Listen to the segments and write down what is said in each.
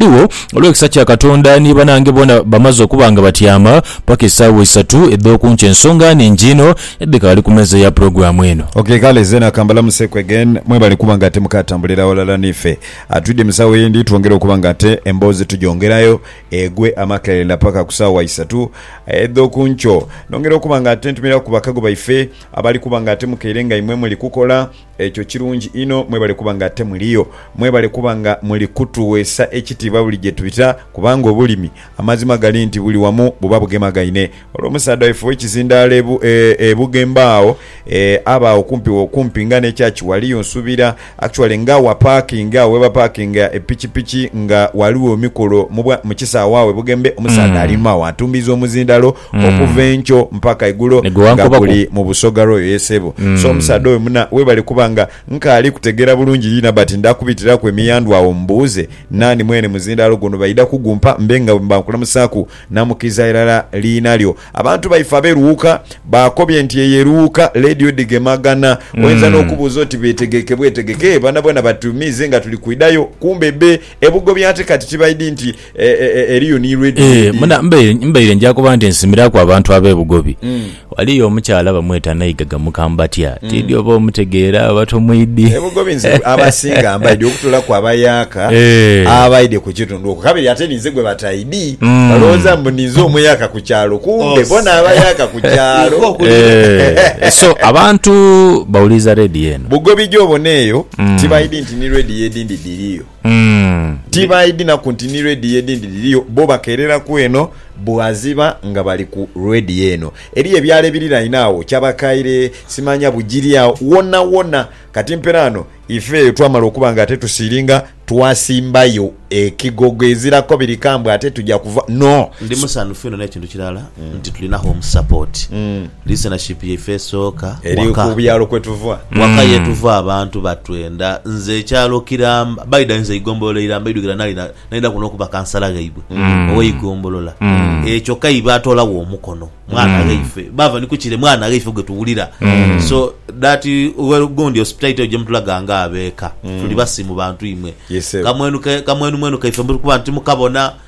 Ghaligho, olw'ekisa kya Katonda, ni banange boona bamaze okuba nga batyama paka esaawa isatu edh'oku nkya, ensonga nhingi inho edhikaali ku meeza ya pulogulaamu eno. Ok kale, zeena ka mbalamuseku again. Mwebale kuba nga ate mukaatambulira ghalala n'ife. Twidhye mu saawa eyindi twongere okuba nga ate emboozi tugyongerayo egwe amakerenda paka ku saawa isatu edh'oku nkyo. Nongera okuba nga ate ntumiraku bakago baife abali kuba nga ate mukaire nga imwe muli kukola, Ekyo kirungi inho. Mwebale kuba nga ate muliyo. Mwebale kuba nga muli kutuweesa ekitiibwa buli gye twita, kubanga obulimi, amazima gali nti buli wamu buba bugemagaine. Olwo omusaadha waife ow'ekizindaalo e, e, e Bugembe agho, e, aba agho kumpi wo, kumpi nga n'ekyaachi ghali, yo nsuubira, actually nga aghapaakinga, agho ghe bapaakinga epikipiki, nga ghaligho emikolo mu bwa, mu kisaawe agho e Bugembe, omusaadha ali inhuma agho atumbiiza omuzindaalo. okuva enkyo mpaka egulo nga guli mu busoga royo ye sebo so omusaadha oyo muna webale kuba nga nkaali kutegera bulungi yina but ndakubitiraku emiyandhu agho mbuuze nani mwene muzindalo guno baidha kugumpa mbe nga bwemba nkulamusaku namukiriza irala liina lyo abantu baife abe Luuka bakobye nti eyo eruuka lady odigemagana oyinza nokubuuza oti betegeke bwetegeke eeh banabona batumiize nga tuli kwidhayo kumbe be ebugobye ate kati kibaidi nti Eriyo ni ready Eeh, medi. muna mbaire mbaire nja kuba nti nsimiraku abantu abe Bugobi. Waliyo omukyala bamweta Naigaga Mukambatya. Tidhi oba omutegeera oba tomwidhi. E Bugobi nze abasinga mbaidhi okutolaku abayaaka Eeh. abaidhi ku kitundu okwo. Kabiri ate ninze gwe bataidhi. Balowooza mbu ninze omuyaaka ku kyalo kumbe Oh, bona abayaaka ku kyalo. Ivo kuli Eeh, so abantu bawuliriza radio eno. Bugobi gy'obona eyo tibaidhi nti ni radio edindi dhiriyo. Ti baidhinaku nti ni rediyo edhindi dhiriyo, bo bakeereraku eno bwaziba nga bali ku rediyo eno. Eriyo ebyalo ebiriraine agho, Kyabakaire, simanya Bugiri agho, wonawona. Kati mperaano ife eyo twamala okuba nga ate tusiiringa, twasimbayo ekigogo ezirako biri kambwe ate tuja kuva. No. Ndi musanhufu inho n'ekintu kirala, nti tulina home support. Listenership yaife esooka Eri waka. ku byalo kwe tuva. Waka yetuva abantu batwenda. Nze ekyalo Kiramba, by da nze eigombolola Iramba eidhukira nali na nali naku nokuba kansala ghaibwe oweigombolola eeh kyoka ibo batolagho omukono mwana ghaife bava ni kukire mwana ghaife gwe tuwulira so that well gundi hospitality eyo gye mutulaga nga abeka tuli basiimu bantu imwe Yes, sebo. kamwenu ke kamwenumwenu kaife mbu kuba nti mukabona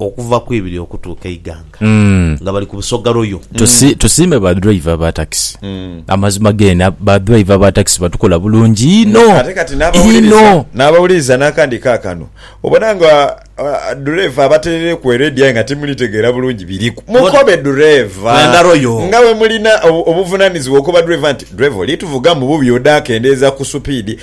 Okuva ku ibiri okutuuka eighanga nga bali ku Busoga Royal. Tusiime ba driver ba takisi amazima geene ba driver ba takisi batukola bulungi inho inho. N'abawuliriza n'akandi kaakano obona nga dhureeva abaterereku eredi aye nga timulitegeera bulungi biriku. Mukobe dhureeva nga bwe mulina obuvunanizibwa okoba dhureeva nti, Dhureeva oli tuvugamu bubi odakendeeza ku supiidi.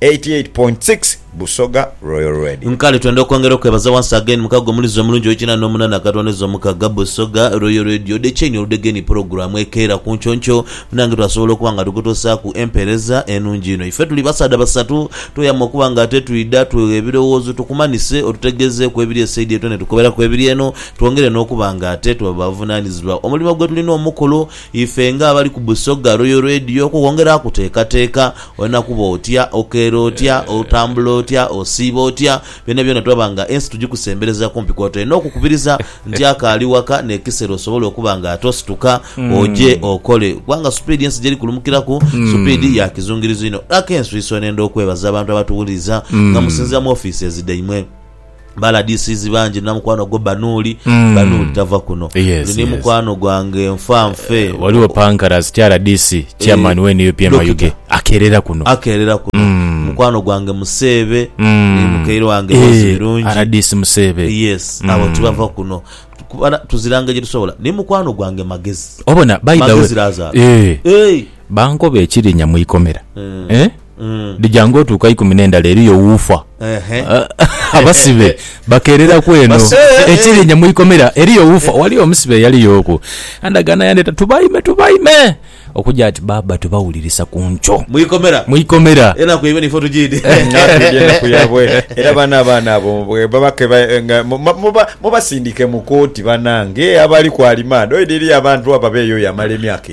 eighty eight point six Busoga Royal Radio. Nkale twenda okwongera okwebaza once again mukago omulizi omulungi owekinana nomunana akatwaniza omukaga Busoga Royal Radio de kyenyi oludega eni pulogulamu ekeera kunkyonky munange twasobola okuba nga tukutusaku empereza enungi ino ife tuli basaadha basatu tweyama okuba nga ate twidha twegha ebirowoozo tukumanise otutegezeku ebiri esaidi eyo tone tukoberaku ebiri eno twongere nokuba nga ate tuba bavunanizibwa omulimo gwetulina omukulu Ife nga abali ku Busoga Royal Radio okwo kwongera kuteekateeka, olina kuba otya, okeera otya, otambula otya, osiiba otya, byonabyona twaba nga ensi tugikusembereza kumpi kw'otyo. Olina okukubiriza nti akaali waka n'ekisera osobole okuba nga ate osituka oje okole kubanga supiidi ensi gy'eri kulumukiraku supiidi ya kizungirizo inho. Laka enswiiso n'enda okwebaza abantu abatuwuliriza nga musinziira mu ofiises dhaimwe. ba LDCs bangi na mukwano gwo Banuuli Mm. Banuuli tava kuno Yes, Oli ni yes. mukwano gwange nfa nfe Eh, waliwo pankarazi kya rdc chairman Eh, wa nup Dokita. mayuge akerera kuno akeerera kuno Mm. mukwano gwange Museebe Mm. ni mukaire wange Eh, Rose Birungi rdc museebe yes Mm. abo tibava kuno Kuba na- tuzira ngeri gyetusobola ni mukwano gwange Magezi obona by the Magezi way Lazaro. Eh, Hey! bankoba ekirinya mu ikomera Eh. Eh? dhija ng'otuuka ikumi n'endala eriyo wuufa. Abasibe bakeereraku eno ekirinya mu ikomera eriyo wuufa. Waliyo omusibe eyaliyooku andagaana yandeeta tubaime tubaime okuja ati baaba tubawulirisa ku nkyo Mu ikomera. mu ikomera. Enaku yaibwe naife otujiidhi. Naatulidde enaku yaabwe era baano abaana abo bwe baba ke ba- nga mu- ma- muba- mubasindike mu kooti banange abali ku alimaanda. Oidha eriyo abantu abo abeeyoya amala emyaka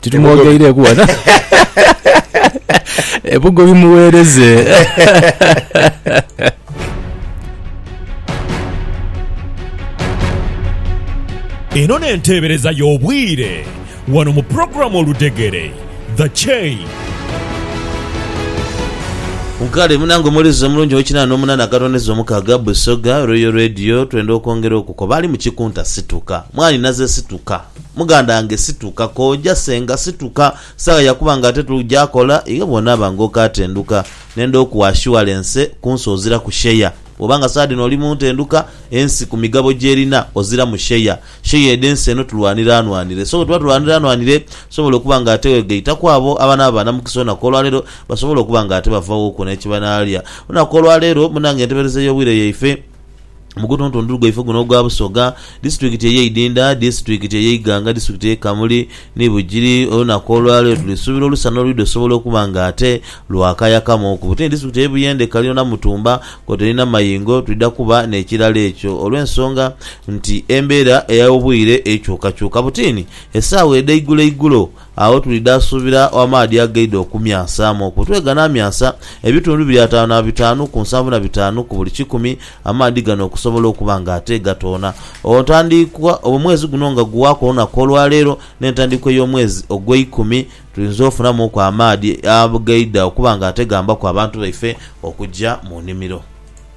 titumwogeireku wano ebugo bimuweereze Eno n'enteebereza y'obwire wano mu pulogulaamu Oludegere, The Chain. Nkale munange omuweereza omulungi ow'ekinaana n'omunaana agatondeza omukaaga, Busoga Royal Radio, twenda okwongera okukoba ali mu kikunta situka. Mwanhi naze situka. Muganda wange situka. Kooja senga situka. Saagha ya kuba ng'ate tujakola. Iwe bw'onaaba ng'okatenduka, nenda okuwa ashuwalense ku nsi oziraku sheya. Bw'oba nga saagha dhino oli mu ntenduka, ensi ku migabo gy'erina oziramu sheya. Sheya edh'ensi eno tulwanire anwanire. So bwe tuba tulwanire anwanire, tusobola okuba ng'ate weegaitaku abo abanaaba ba namukisa olunaku olwaleero, basobole okuba ng'ate bavawo ku n'ekibanaalya. Olunaku olwaleero munange ntebereza ey'obwire yaife. mu gutuntundu gwaife guno ogwa Busoga, disitulikiti eye Idinda, disitulikiti eye Iganga, disitulikiti eye Kamuli ni Bugiri. Olunaku olwaleero tuli suubira olusana olwidha osobola okuba nga ate lwakayakamuuku. Butini disitulikiti eye Buyende ekalino na Mutumba kwotaire na Mayingo twidha kuba nekirala ekyo olwensonga nti embera eya obwire ekyukakyuka. Butini esaawa edha igulo igulo Agho tulidha suubira amaadhi agaidha okumyansaamu okwo. Tube ganaamyansa ebitundu biri ataanu na bitaanu ku nsanvu na bitaanu ku buli kikumi, amaadhi gano okusobola okuba nga ate gatoona. Ogho ntandiikwa, oba omwezi guno nga guwaaku olunaku olwa leero n'entandiikwa ey'omwezi ogweikumi, tuyinza ofunamuuku amaadhi agaidha okuba nga ate gambaku abantu baife okugya mu nimiro.